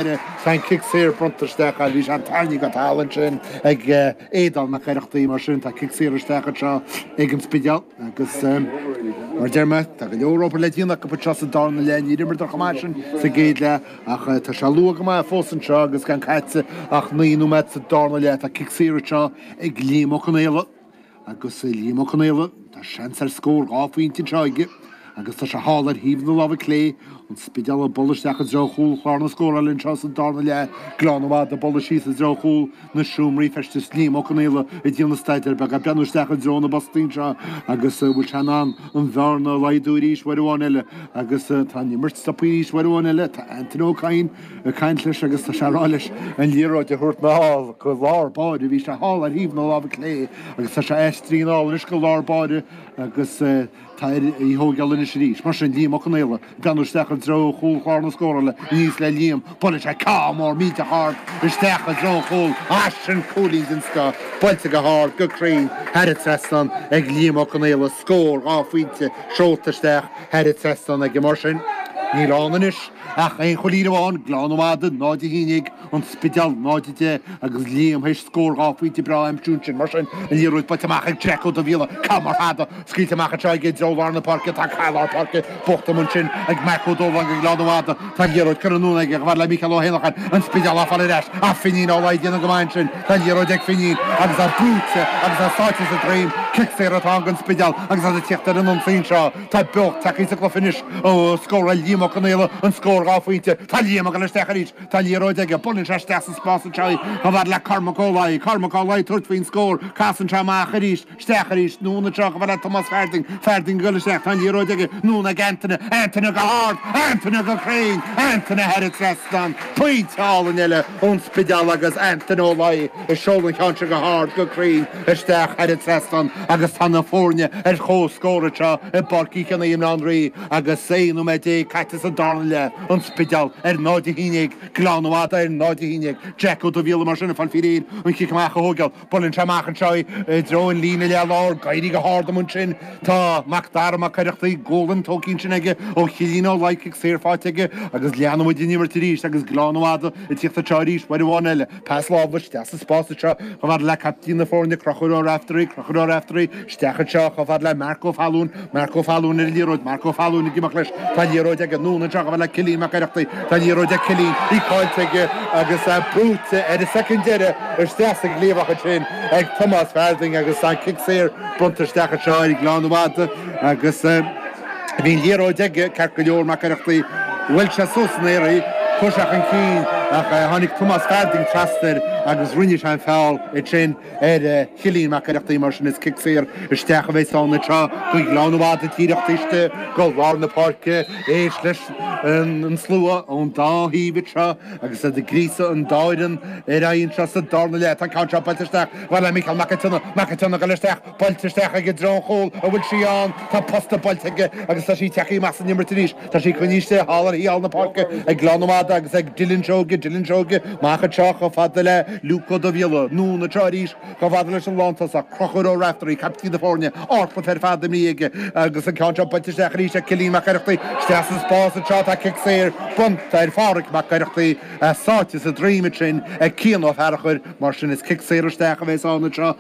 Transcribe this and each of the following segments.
Tá an cic saor bronnta isteach ann. Bhí sé á tharraingt go talamh ansin ag Aodán Mac Oireachtaigh. Mar sin, tá cic saor isteach anseo ag an Spidéal agus, mar a deir mé, tá go leor obair le déanamh acu anseo sa darna leath. Níor imríodar chomh maith sin sa gcéad leath ach tá sé luath go maith fós anseo agus gan caite ach naoi nóiméad sa darna leath. Tá cic saor anseo ag Liam Ó Conaola. Agus Liam Ó Conaola, tá seans ar scór dhá phointe anseo aige agus tá sé thall ar thaobh na láimhe clé, an Spidéal ag dul isteach i dtreo chúl chlár na scórála anseo sa darna leath, Gleann an Mhadaidh ag dul síos i dtreo chúl na seomraí feistis, Liam Ó Conaola ag déanamh staidéar beag, ag breathnú isteach i dtreo na bpostaí anseo agus an bhfuil sé in ann an bhearna a laghdú arís uair amháin eile agus tá an imirt stoptha arís uair amháin eile, tá Antaine Ó Cadhain ag caint leis agus tá sé ag rá leis an liathróid a thabhairt anall go lár báire. Bhí sé thall ar thaobh na láimhe clé agus tá sé aistrithe anall anois go lár báire agus tá air í a thógáil anois arís. Mar sin, Liam Ó Conaola ag breathnú isteach i dtreo chúl chlár na scórála. Aníos le Liam. Buaileann sé ceann mór millteach ard isteach i dtreo an chúil. Á, sin cúilín den scoth, buailte go hard, go cruinn, thar an trasnán ag Liam Ó Conaola. Scór, dhá phointe, seolta isteach thar an trasnán aige. Mar sin, níl ann anois. Ach aon chúilín amháin, Gleann an Mhadaidh, 0 11, An Spidéal, 0 10, agus Liam théis scór dhá phointe breá a aimsiú ansin. Mar sin, an liathróid buailte amach ag Jack Ó Dubhghaill, ceann mór fada, scaoilte amach anseo aige i dtreo lár na páirce, tá cath i lár páirce buachta amuigh ansin ag Mac Ó Dóláin do Ghleann an Mhadaidh, tá an liathróid curtha anonn aige, chomh fhad le Mícheál Ó hÉanacháin, An Spidéal á fáil ar ais ach Finín Ó Laoi ag déanamh go maith ansin, tá an liathróid ag Finín agus é brúite agus é sáite sa droim, cic saor atá ann don Spidéal agus iad ag tíocht ar an ionsaí anseo. Tá beocht tagtha sa gcluiche anois ó scóráil Liam Ó Conaola an scór dhá phointe. Tá Liam ag dul isteach arís. Tá an liathróid aige. Buaileann sé isteach sa spás anseo í. Chomh fhad le Cormac Ó Laoi. Cormac Ó Laoi ag tabhairt faoin scór. Casann sé amach arís. Isteach arís. Anonn anseo chomh fhad le Tomás Farthing. Farthing ag dul isteach. Tá an liathróid aige. Anonn ag Antaine. Antaine go hard. Antaine go cruinn. Antaine thar an trasnán. Pointe álainn eile ón Spidéal agus Antaine Ó Laoi. A sheol an ceann seo go hard, go cruinn isteach thar an trasnán agus tá na foirne ar chomhscór anseo i bPáirc Uí Chionnaith i mBaile Átha an Rí agus 16 nóiméad caite sa darna leath, An Spidéal ar 0-11 Gleann an Mhadaidh ar 0-11. Jack Ó Dubhghaill mar sin ag fáil faoi réir an cic amach a thóigeáil. Buaileann sé amach anseo i dtreo an líne leath lár, ag éirí go hard amuigh ansin. Tá Mac Dara Mac Oireachtaigh, Gualainn, tógtha ansin aige ó Chillín Ó Laoi, cic saor faighte aige agus leanann muid an imirt arís agus Gleann an Mhadaidh ag tíocht anseo arís uair amháin eile. Pas láimhe isteach sa spás anseo chomh fada le caiptín na foirne, Conchúr Ó Raiftearaí, Conchúr Ó Raiftearaí, isteach anseo chomh fada le Marc Ó Fallúin, Marc Ó Fallúin ar an liathróid, Marc Ó Fallúin ag imeacht leis, tá an liathróid aige, anonn anseo chomh fada le Cillín Mac Oireachtaigh, tá an liathróid ag Cillín, í cáillte aige agus é brúite ar an soicind deireadh isteach sa gcliabhach ansin ag Tomás Farthing agus tá an cic saor bronnta isteach anseo ar Ghleann an Mhadaidh agus Bhí an liathróid ag, ceart go leor, Mac Oireachtaigh. Bhuail sé suas san aer í, chuir sé chun cinn, ach tháinig Tomás Farthing trasna air agus rinne sé an feall sin ar Chillín Mac Oireachtaigh. Mar sin, is cic saor isteach a bheas ann anseo do Ghleann an Mhada díreach taobh istigh de lár na páirce. Éist leis an slua ón dá thaobh anseo agus iad ag gríosadh an dá fhoireann ar aghaidh anseo sa darna leath. Tá an ceann seo buailte isteach i mbealach Micheál Mac an tSionnaigh. Mac an tSionnaigh ag dul isteach. Buailte isteach aige i dtreo an chúil, an bhfuil sí ann. Tá an posta buailte aige agus tá sí ag teacht amach san imirt arís. Tá sí coinnithe istigh thall ar thaobh thall na páirce ag Gleann an Mhada agus ag Dillon Seoige, Dillon Seoige, amach anseo chomh fada le Luke Ó Dubhghiolla, anonn anseo arís chomh fada leis an lántosaí, Crochúr Ó Reachtaire, caiptín na foirne, ardchluiche ar fad imrithe aige agus an ceann seo buailte isteach arís ag Cillín Mac Oireachtaigh. Isteach san spás anseo tá cic saor, bronnta ar Pháraic Mac Oireachtaigh, é sáite sa droim ansin ag Cian Ó Fearachair, mar sin is cic saor isteach a bheas ann anseo.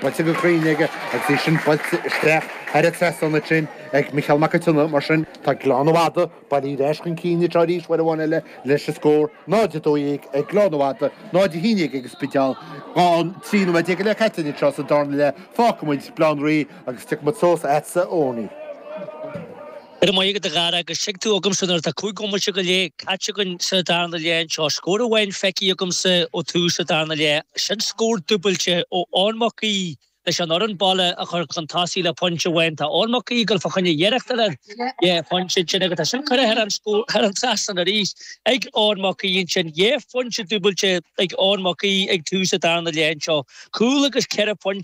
buailte go cruinn aige agus í sin buailte isteach thar an trasnán ansin ag Micheál Mac an tSionnaigh, mar sin, tá Gleann an Mhada bailithe ar ais chun cinn anseo arís uair amháin eile, leis an scór, 0:12 ag Gleann an Mhada, 0:11 ag an Spidéal, an trí nóiméad déag go leith caite linn anseo sa dara leath, fágfaimid Baile Átha an Rí agus tiocfaimid suas a'tsa a Eoinín. Go raibh maith agat, a Dhara, agus tig tú chugamsa nuair atá cúig bhomaite go leith caite againn sa darna leath anseo. Scór amháin feicthe agamsa ó tús an darna leath, sin scór dúbailte ó Eoin Mac Aoidh leis an fhoireann baile a chur chun tosaigh le pointe amháin. Tá Eoin Mac Aoidh ag dul fá choinne iarracht eile dhá phointe ansin agus tá sin curtha thar an trasnán arís ag Eoin Mac Aoidh ansin. Dhá phointe dúbailte ag Eoin Mac Aoidh ag tús an darna leath anseo, cúl agus ceithre phointe.